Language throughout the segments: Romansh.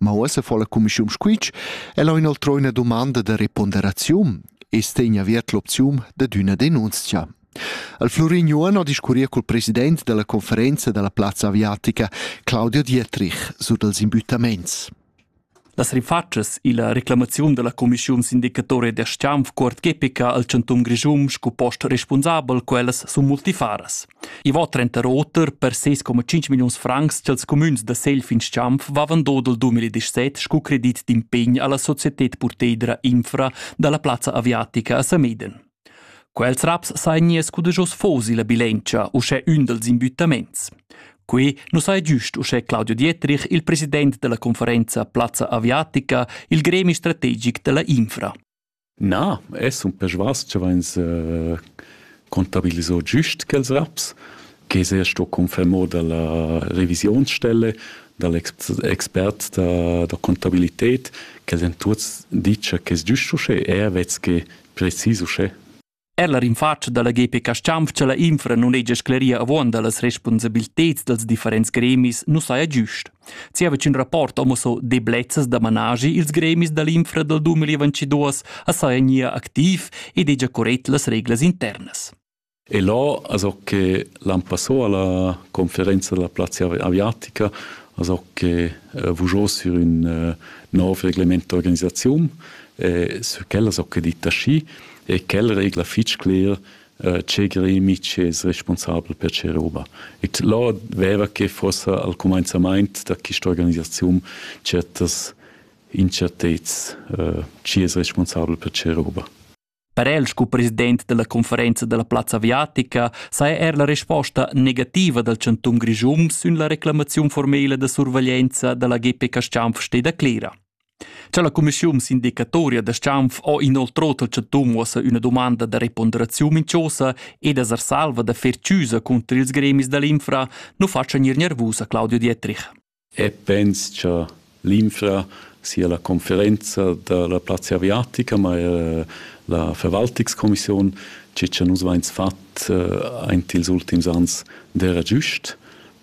Ma uossa fo la cumischium squitsch, el ho inoltrò üna dumanda da reponderaziun e stegna aviert l'opzium dad üna denunzia. Al Florin Juan ho discurrir col president della conferenza della plazza aviatica, Claudio Dietrich, su dals imbüttaments. Las rifatschas illa reclamaziun della cumischiun sindicatore da Stianf cuort gepica al chantun Grischun scu post responsabel quellas sun multifaras. I va trenter oter per ses coma 5 milliuns francs ch'els cumüns da Selfins-Champ vavan dodel 2017 scu credit d'impegn alla societed purteidra Infra dalla plazza aviatica a Sameden. Quels raps sain nies cudegios fosi la bilentia uschè ün dels imbüttaments. Qui nu sai giust uschè Claudio Dietrich, il president della conferenza Plazza Aviatica, il gremi strategic della Infra. Na, e sun persvas cha vains contabiliso giüst quels raps che s'ha sto confermà da la revisionsstelle, da l'expert da da contabilited, ch'els han tuots dit cha quest es giüst uschè, eir vez che precis uschè. Er la rinfatscha dalla GPK Stampfcha la infra non hegia scleria avuonda las responsabiliteds dels differents gremis nu saja giust. Zieva ch'ün rapport homo so deblezzas da managi ils gremis dall'infra dal 2022 a saja gnir activ ed hegia corrett las reglas internas. E là, also che l'an passò alla conferenza della plazza aviatica, also che eh, vujò sur un eh, nov reglemento organizzaziun, eh, su quella so che ditta schi, e quel regla fitg cler eh, tgei Mitsch es responsabel per ce roba. E là veva che fossa al comenzament da questa organisazione certas incertezz eh, chi es responsabel per ce roba. Per el sco president della conferenza della plazza aviatica sai er la risposta negativa del Cantun Grischum sün la reclamazione formele de surveglienza della GP Castianf steda clera. Cha la cumischiun sindicatoria da schanf ho inoltro tel chantun uossa üna dumanda da reponderaziun minchosa ed es ar salva da fer chüsa cunter ils gremis da l'infra nu fatscha gnir gnervus a Claudio Dietrich. E pens cha l'infra sia la conferenza da la plazza aviatica, ma eir la Verwaltungskommission, chi cha nus vains fat aint ils ultims ans, d'eira giust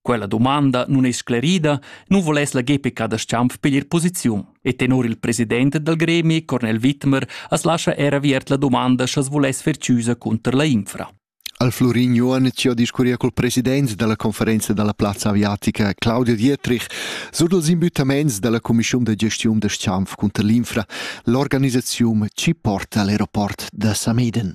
Quella domanda nun è sclerida, nu voless la GP Cadasciamp piglier posiziun e tenor il president dal gremi, Cornel Wittmer, as lascha er aviert la domanda sch'as voless fer chiusa cunter la infra. Al Florin Joanic ho discurria col president dalla conferenza dalla plazza aviatica Claudio Dietrich sur dals imbüttaments dalla cumischiun da gestiun da Schanf cunter l'infra. L'organisaziun ci porta all'aeroport da Sameden.